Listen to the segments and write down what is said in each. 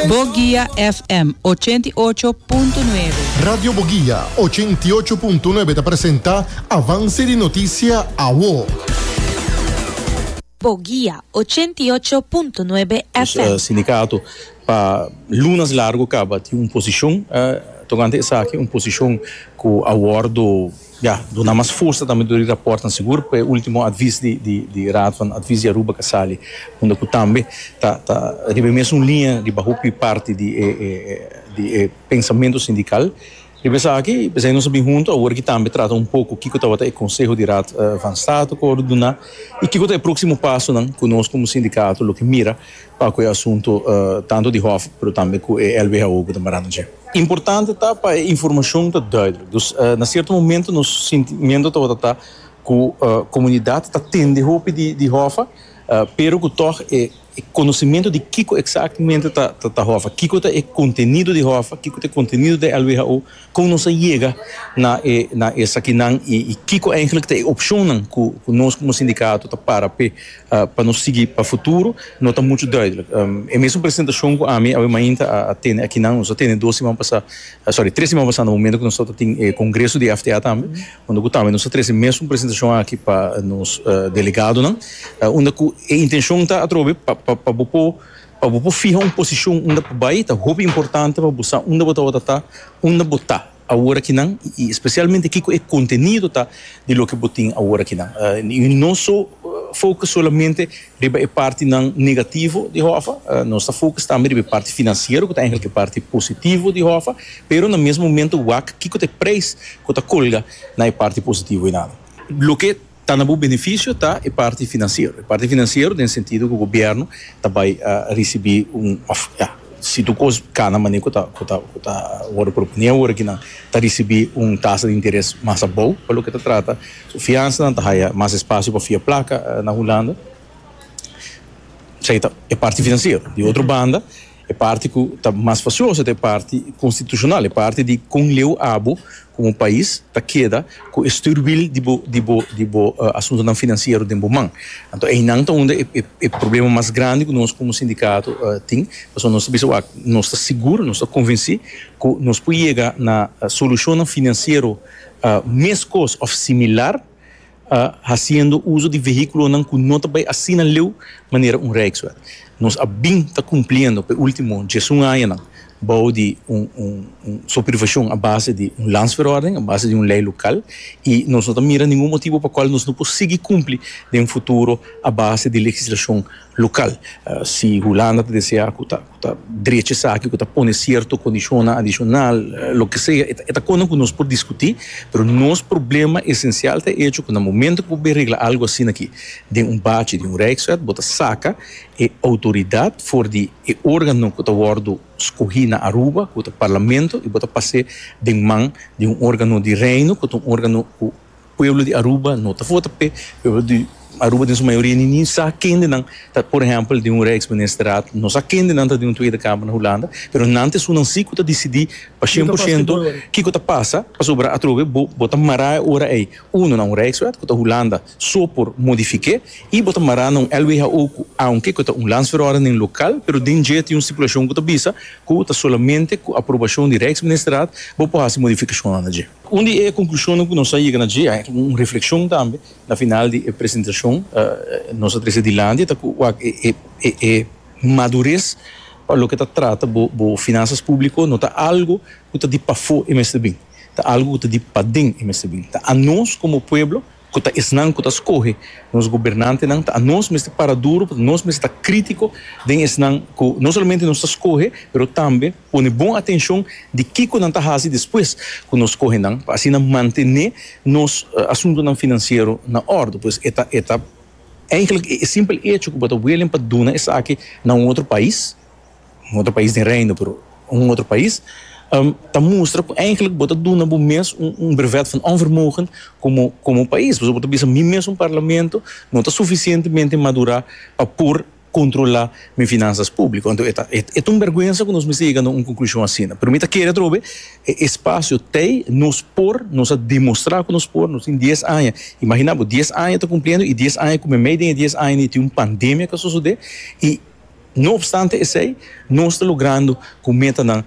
Boguia FM ochenta i ocho punto nuebe. Radio Boguia ochenta i ocho punto nuebe ta presenta Avance di Noticia Awo. Boguia ochenta i ocho punto nuebe FM. Sindicato pa lunas largo caba tin un posicion tocante esaki, un posicion cu a wordo Ya, duna mas fursa tambe tur di raportnan sigur pa e ultimo advis di Raad van Advies di Aruba ka sali, unda ku tambe ta ta riba e mesun liña riba hopi di parti di e di e pensamentu sindikal. Riba esaki p'esei nos a bin huntu awor aki tambe trata un poko kiko tabata e konseho di Raad van State ku a wòrdu duna i kiko ta e próksimo pasonan ku nos komo sindikato lo ke mira pa cu e asunto tanto di hof pero tambe cu e LBHO cu ta marando dje. Importante ta pa e informacion ta duidelijk, dus na cierto momento nos sentimiento tabata ta cu comunidad ta tende hopi di hof pero cu tog e conocimiento di kico exactamente ta hof, kico ta e contenido di hof, kico ta e contenido di LBHO, Kon nos a yega na e na esakinan i i kiko eigenlijk ta e opshonnan ku ku nos komo sindikato ta para p'e pa nos sigui pa futuro no ta muchu duidelijk. E mesun presentashon ku ami awe mainta a a tene akinan, nos a tene dos siman pasá, sòri, tres siman pasá na momentu ku nos tabata tin e kongreso di FTA tambe, unda ku tambe nos a trese e mesun presentashon aki pa nos delegadonan, unda ku e intenshon ta atrobe pa pa pa bo por Pa bo por fiha un posishon unda pa bai ta hopi importante pa bo sa unda bo tabata ta, unda bo ta aworakinan i spesialmente kiko e kontenido ta di loke bo tin aworakinan. I no so fokus solamente riba e partinan negativo di Hòfa, nos ta fokus tambe riba e parti finansiero ku ta èinklik e parti positivo di Hòfa, pero na mes momento wak kiko ta e preis ku ta kolga na e parti positivo einan. Loke Ta na bo beneficio ta e parti financiero, e parti financiero den sentido cu gobierno ta bay a ricibi un of ya si tur cos cana manera cu ta cu ta cu ta worde propone awor aki nan ta ricibi un tasa di interes mas abou pa loke ta trata su fiansa nan ta haya mas espacio pa fia placa na Hulanda esey ta e parti financiero. Di otro banda. E parti ku ta mas fasioso ta e parti konstitushonal, e parti di kon leu abo komo pais ta keda ku e stürwil di bo di bo di bo asuntunan finansiero den bo man. Anto einan ta unda e e problema mas grandi ku nos komo sindikato tin, pasobra nos ta bisa wak nos ta sigur, nos ta konvensí ku nos por yega na solushonnan finansiero meskos òf similar Hasiendo uso di vehículonan cu no ta bay asina leu manera un Rijkswet, nos a bin ta cumpliendo p'e ultimo djesun añanan bao di un supervision a base di un Landsverordening, a base di un ley local, y nos no ta mira ningun motibo pa cual nos no por sigui cumpli den futuro a base di legislacion local. Si Hulanda ta desea cu ta. ta drecha esaki ku ta pone sierto kondishonnan adishonal, loke sea, e ta kosnan ku nos por diskutí, pero nos problema esensial ta e echo ku na momentu ku bo bai regla algu asina aki den un bachi di un Rijkswet bo ta saka e outoridat for di e órgano ku ta wòrdu skohí na Aruba ku ta Parlamento i bo ta pas'é den man di un órgano di Reino ku ta un órgano ku Pueblo di Aruba no ta vota p'e. Pueblo di Aruba den su mayoria ni ni sa kende nan ta por ehempel di un rijksministerat, no sa kende nan ta di un Tweede Kamer na Hulanda, pero nan ta esunnan si ku ta disidí pa shen por shento kiko ta pasa, pasobra atrobe bo bo ta mará e ora ei uno na un rijkswet ku ta Hulanda so por modifik'é i bo ta mará na un LWHO ku aunke ku ta un landsverordening lokal pero den dje tin un stipulashon ku ta bisa ku ta solamente ku aprobashon di rijksministerat bo por hasi modifikashonnan na dje. Un di e konklushonnan ku nos a yega na dje, a yega un reflekshon tambe na final di e presentashon nos a trese dilanti, ta ku wak e madures pa loke ta trata bo finansas públiko no ta algu ku ta di pafó e mester bin, ta algu ku ta di paden e mester bin, ta anos komo pueblo ku ta esnan ku ta skohe nos gobernantenan, ta anos mester para duru, pasobra nos mester ta krítiko den esnan ku no solamente nos ta skohe, pero tambe pone bon atenshon di kiko nan ta hasi despues ku nos skohe nan, pa asina mantené nos asuntunan finansiero na òrdu. Pues e ta, e ta, èinklik e simpel echo ku bo ta welen pa duna esaki na un otro pais, un otro pais den Reino, pero un otro pais, ta mustra cu eigenlijk bo ta duna bo mes un brevet van onvermogen como como pais. Pasobra bo ta bisa mi mes un Parlamento no ta suficientemente madura pa por controla mi finanzas publico. Anto e ta e ta un berguensa cu nos mester yega na un conclusion asina. Pero mi ta kere atrobe e espacio tey nos por, nos a demostra cu nos por, nos tin dies aña, imagina bo dies aña ta cumpliendo y dies aña cu meimei den e dies aña ni tin un pandemia cu a sosode y, No opstante esei, nos ta logrando cu metanan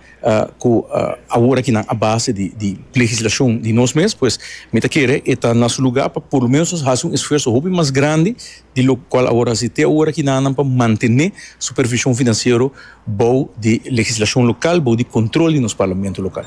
cu awor aki nan a base di legislacion di nos mes, pues mi ta kere e ta na su lugar pa por lo menos nos haci un esfuerso hopi mas grandi di locual awor a haci te awor aki nan nan pa mantene supervision financiero bou di legislacion local, bou di control di nos parlamento local.